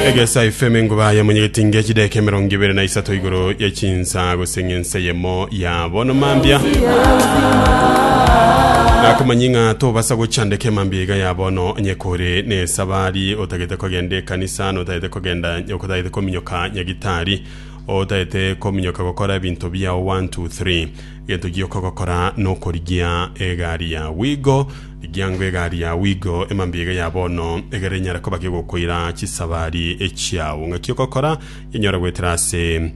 egesa efeme nguba ya monyegeti nge chideke emerongo ibere na isato igoro ya chinsa gose ng'ense yemo ya bono mambia nakomanyi ng'a tobasa gochandeka emambia iga ya bono onye kore na esabari otagete kogenda ekanisa notagete kogenda otagete kominyoka nyagitari otagete kominyoka gokora ebinto biao 1 2 3 gento giokogokora nokorigia egari ya wigo Ekiagera egari yao igo emambiiga ya bono, egerera enyare koba kegokoira chisabari chiao. Ng'aki ogokora, Yenyore goetera ase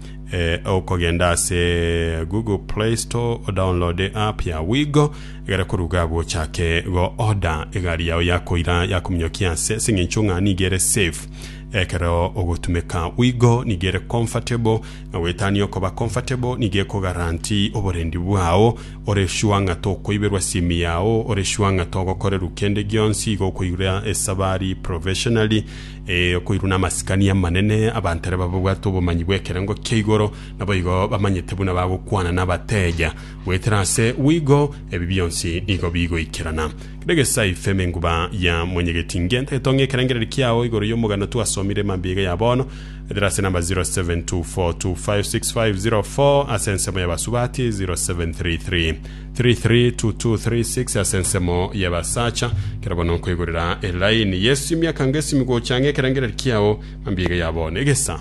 okogenda ase Google Play Store odownloade app yao igo, egere koruga agwo ochake go order egari yao ya koira ya kominyokia ase ase eng'encho ng'a nigo ere safe ekero ogotumeka. Igo nigo ere comfortable. Na goetania okoba comfortable nigo eko guarantee oborendi bwao, ore sure ng'a tokoiberwa simu yao, ore sure ng'a togokorerwa kende gionsi, igo okoirwa esabari professionally, ee, okoirwa namasikani amanene, abanto ere bababwate obomanyi bw'ekerengo kia igoro, naboigo bamanyete buna bagokwana nabateja. Goetera ase wigo, ebi bionsi nigo bigoikerana. Kera egesae ifema enguba ya mwenyegetingi, entagete ong'e ekerengererio kiao igoro y'omogano twasomire mambia iga ya bono, Etera ase namba 0724256504 ase ensemo y'abasubati, 0733332236 ase ensemo y'abasacha. Kera bono nkoigorera elaini Yesu emiaka ngesimi gocha ang'e ekerengereri kiao mambia iga ya bono. Egesa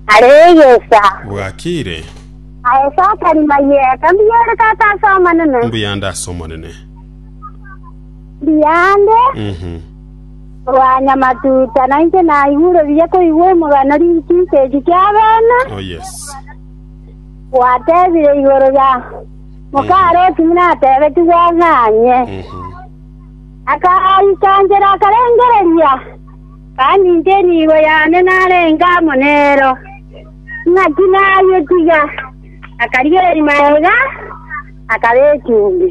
Aregesa. bwakire Aesa atari mayeka. Mbiyere tata ase amanene. mbuyande ase omonene. Mbiyande. Mhm. Bwanyamatuta nainche naigure buya koigwa omogano rinkigisa eki ki'abana. Oh yes. Gwatebire igoro ya mokaro otimi natebetigwe ang'anye. Mhm. Akaikanchera akarengereria, kandi inche nigo yane narenge amo nero. Ng'aki nayetiga, akarigereria maega, akaba echumbi.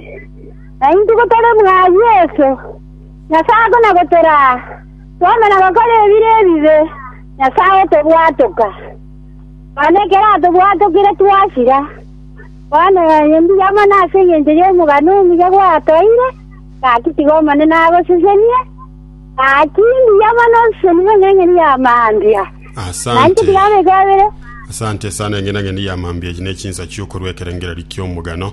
Naintuko tore mwa Yeso, Nyasae akona gotoraa, twame na gokora ebire ebibe, Nyasae otobwatoka. Nonya ekero atobwatokire twasira. Bono onye mbuya mono ase engencho y'omogano omuya gwatoeire, gaki tiga Omonene agosesenie, gaki mbuya mono obiseseni bw'eng'eng'eni ya mambia. Asante. Nainche tiga abekwabere. Asante sana eng'enang'eni ya mambia eyi ne chinsa chiokorwa ekerengererio ki'omogano.